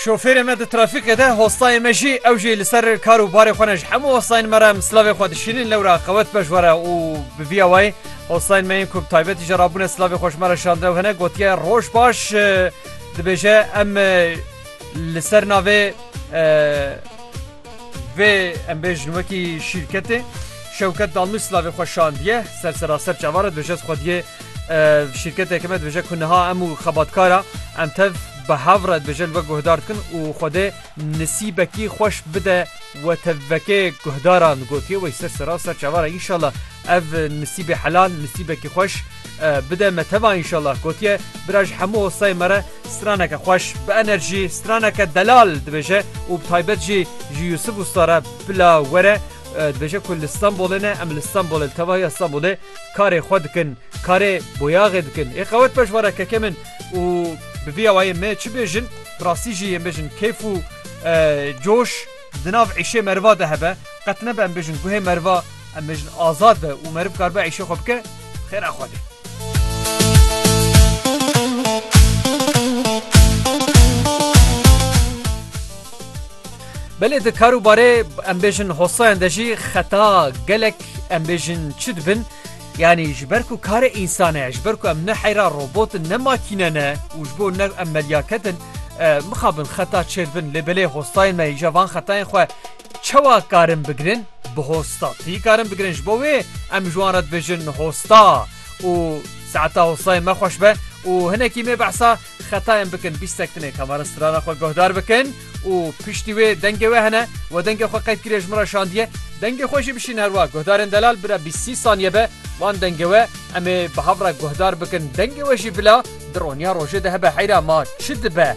Şofêrê me di trafîkê de, hostayê me jî, ew jî li ser kar û barê xwe ne. Ji hemû hostayên me re em silavê xwe dişînin, lewra qewet beş were û bi vîya wayî hostayên me yên ku bi taybetî jî rabûne silavê xwe ji me re şand ew hene gotiye roj baş dibêje em li ser navê Vê em bêjin wekî şîrketê Şewket Dalmî slavê xwe şandiye ser seraser çava re dibêje xwediye şîrketeke me dibêje ku niha em û xebatkara em tev bi hev re dibêje li we guhdar dikin û xwedê nisîbekî xweş bide we tevvekê guhdaran gotiye wey ser seraser çava re înşala Ev nisîbê helal, nisîbekî xweş bide me teva înşallah gotiye bira ji hemû hostayê me re straneke xweş bi enerjî straneke delal dibêje û bi taybet jî ji Yusuf Usta re bila were dibêje ku li Stenbolê ne em li Stenbolê li tevahiya Stenbolê karê xwe dikin karê boyaxê dikin ê qewet beş were kekê min û bi vî awayê me çi bêjin bi rastî jî yên bêjin keyf û coş Di nav îşê meriva de hebe, qet nebe em bêjin guhê meriva, em bêjin azad be û meriv karibe îşê xwe bike, xêra Xwedê. Belê di karûbarê em bêjin hosayan de jî xeta gelek em bêjin çi dibin, Yanî ji ber ku karê însan e, ji ber ku em ne heyra robot in, ne makîne ne û ji bo ne em medyaket in, mixabin xeta çêr bin lê belê hostayên me îja van xetayên xwe çawa karin bigirin? Bi hostatî karin bigirin. Ji bo wê em ji wan re dibêjin hosta û saeta hostayên me xweş be û hinekî mê behsa xetayên bikin bîstek tune kamera strana xwe guhdar bikin û piştî wê dengê wê hene we dengê xwe qeyd kiriye ji min re şandiye dengê xwe jî bişîne her wa guhdarên delal bira bîst sî saniye be wan dengê we em ê bi hev re guhdar bikin dengê we jî bila di roniya rojê de hebe heyra ma çi dibe.